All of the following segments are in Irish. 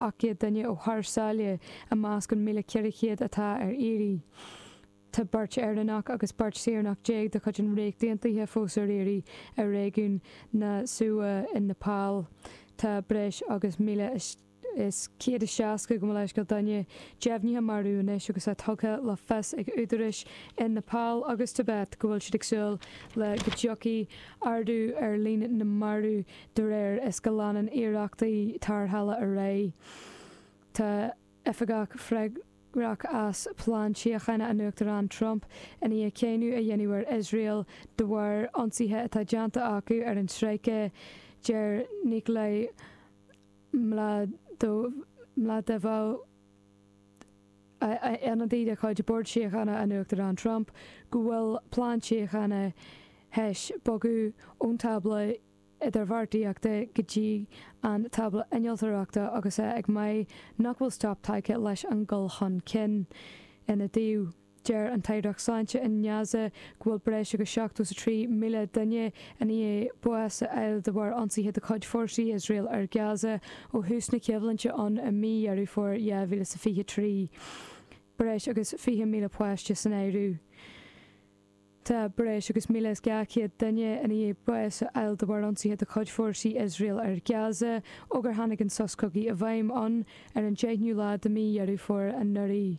800 duine ó thar sáile i measc an 1,400 atá ar iarraidh. Tá beirt Éireannach agus beirt saoránach déag de chuid an Ríocht Aontaithe fós ar iarraidh i réigiún Rasuwa i Nepal. Tá breis agus 1,160 gabh mo leithscéal duine deimhnithe marbh anois agus é tugtha le fios ag údaráis i Nepal agus Tibet go bhfuil siad ag súil le go dtiocfaidh ardú ar líon na marbh De réir is go leanann iarrachtaí tarrthála ar aghaidh, tá oifigeach freagrach as plean síochána an Uachtaráin Trump i ndiaidh cáineadh a dhéanamh ar Iosrael de bharr ionsaithe atá déanta acu ar an stráice, deir Nikolay Mladenov, ionadaí de chuid Bhord Síochána an Uachtaráin Trump, go bhfuil plean síochána tar éis bogadh ón tábla idirbheartaíochta go dtí an tábla innealtóireachta agus é ag maíomh nach bhfuil stop tagtha leis an dul chun cinn ina dtaobh. Deir an tAireacht Sláinte i nGaza go bhfuil breis agus 73,000 duine i ndiaidh bás a fháil de bharr ionsaithe de chuid fórsaí Iosrael ar Gaza ó thús na coimhlinte ann i mí Dheireadh Fómhair 2023. Breis agus 20,000 páiste san áireamh. Tá breis agus míle is dhá chéad duine i ndiaidh bás a fháil de bharr ionsaithe de chuid fórsaí Iosrael ar Gaza ó gur tháinig an sos cogaidh i bhfeidhm ann ar an deichniú lá de mhí Dheireadh Fómhair anuraidh.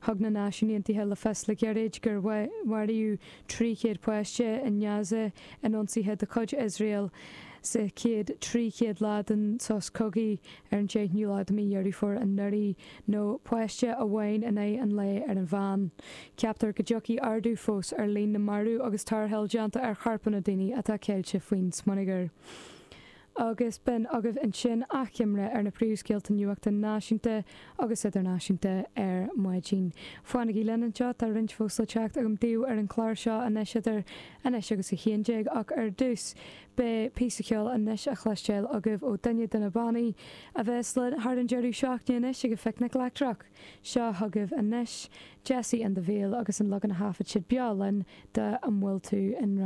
Thug na Náisiúin Aontaithe le fios le gairid gur maraíodh 300 páiste i nGaza in ionsaithe de chuid Iosrael sa chéad 300 lá den sos cogaidh ar an deichniú lá de mhí Dheireadh Fómhair anuraidh, nó páiste amháin in aghaidh an lae ar an mheán. Ceaptar go dtiocfaidh ardú fós ar líon na marbh agus tarrtháil déanta ar chorpanna daoine atá ceilte faoin smionagar. Agus b'in agaibh ansin achoimre ar na príomhscéalta nuachta náisiúnta agus idirnáisiúnta ar maidin. Fanaigí linn anseo, tá roinnt fós le teacht agam daoibh ar an chlár seo anois idir anois agus a haon déag ach ar dtús, Beidh píosa ceoil anois a chloisteáil agaibh ó duine de na bannaí a bheas linn thar an deireadh seachtaine anois ag an Phicnic Leictreach. Seo chugaibh anois Jessie and the Veil agus an leagan a thaifead siad beo linn de 'An Bhfuil Tú I nGrá.